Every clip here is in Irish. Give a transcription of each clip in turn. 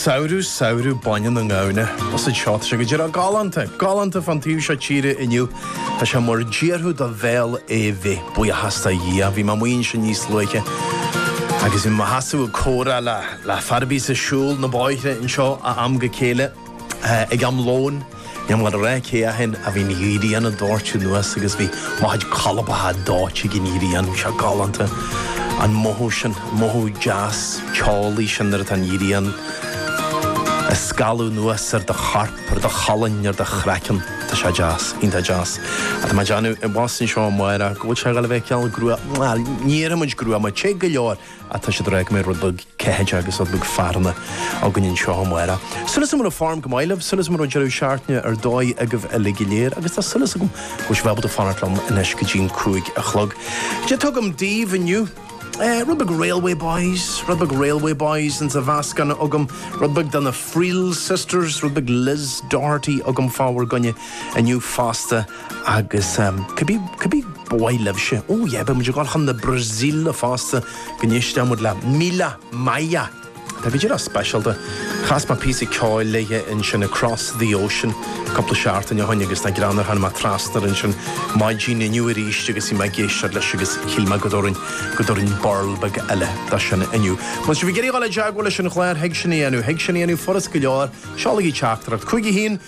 Samhradh, samhradh, bainne na ngamhna, agus seo tá sé go díreach galánta, galánta fán taobh seo tíre inniu, tá sé mar d'iarrfadh do bhéal é a bheith, buíochas do Dhia, bhí mé amuigh ansin níos luaithe agus bhí mé i mo sheasamh ag comhrá le, le fear a bíos ag siúl na bóithre anseo ó am go chéile. Ag am lóin, níl mé ag rá cé ahaon a bhí an ghrian ag doirteadh anuas agus bhí muid chóir a bheith dóite ag an ngrian. Tá sé galánta, an mothú sin, mothú deas teolaí sin nuair atá an ghrian ag scalladh anuas ar do chorp, ar do cholainn, ar do chraiceann. Tá sé deas, iontach deas. Tá mé ag déanamh abhus anseo amárach go bhfuil sé ag gabháil a bheith cineál gruama, bhuel, ní déarfaidh muid gruama, te go leor. a tá siad ag rá go mbeidh rud beag ceathaideacha agus rud beag fearthainne againn anseo amárach. Súil agam go bhfuil an fhoirm go maith libh, súil agam go raibh deireadh seachtaine ar dóigh agaibh uilig go léir agus tá súil agam go bhfuil sibh ábalta fanacht liom anois go dtí'n cúig a chlog. Cad é atá agam daoibh inniu, eh, rud beag Railway Boys, rud beag Railway Boys ins a' mheascán agam, rud beag de na Friel Sisters, rud beag Liz Doherty agam fá bhur gcoinne inniu fosta. Agus cibé ba mhaith libhse, ó yeah, beidh muid ag dul chun na Brasaíle fosta go n-éistfidh muid le Mila Maia. Tá go díreach speisialta. Chas mé píosa ceoil léi ansin, Across the Ocean, cúpla seachtain ó shin agus nach greannmhar tháinig mé trasna air ansin maidin inniu arís agus bhí mé ag éisteacht leis agus shíl mé go dtabharfainn go dtabharfainn burl beag eile dó sin inniu. Má tá sibh ag iarraidh dul i dteagmháil leis an gclár, thig sin a dhéanamh, thig sin a dhéanamh furast go leor, seolaigí teachtaireacht chuig, 1,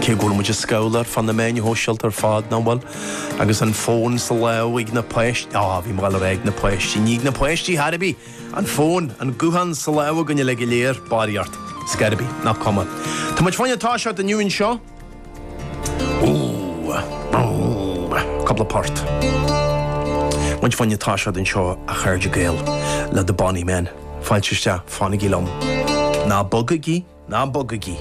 Cé go bhfuil muid ag scrolláil ar fud na meáin shóisialta ar fad, nach bhfuil? Agus an fón sa láimh ag na páis- Á, bhí mé ag gabháil a rá ag na páistí. Ní ag na páistí ar chor ar bith! An fón, an guthán sa láimh againn uilig go léir, barraíocht. Ar scor ar bith. Nach cuma. Tá muid féin ag toiseacht inniu anseo. Ooh. Ooh. Cúpla port. Muid féin ag toiseacht anseo, a chairde Gael, le The Bonny Men. Fáilte isteach. Fanaigí liom. Ná bogaigí. Ná bogaigí.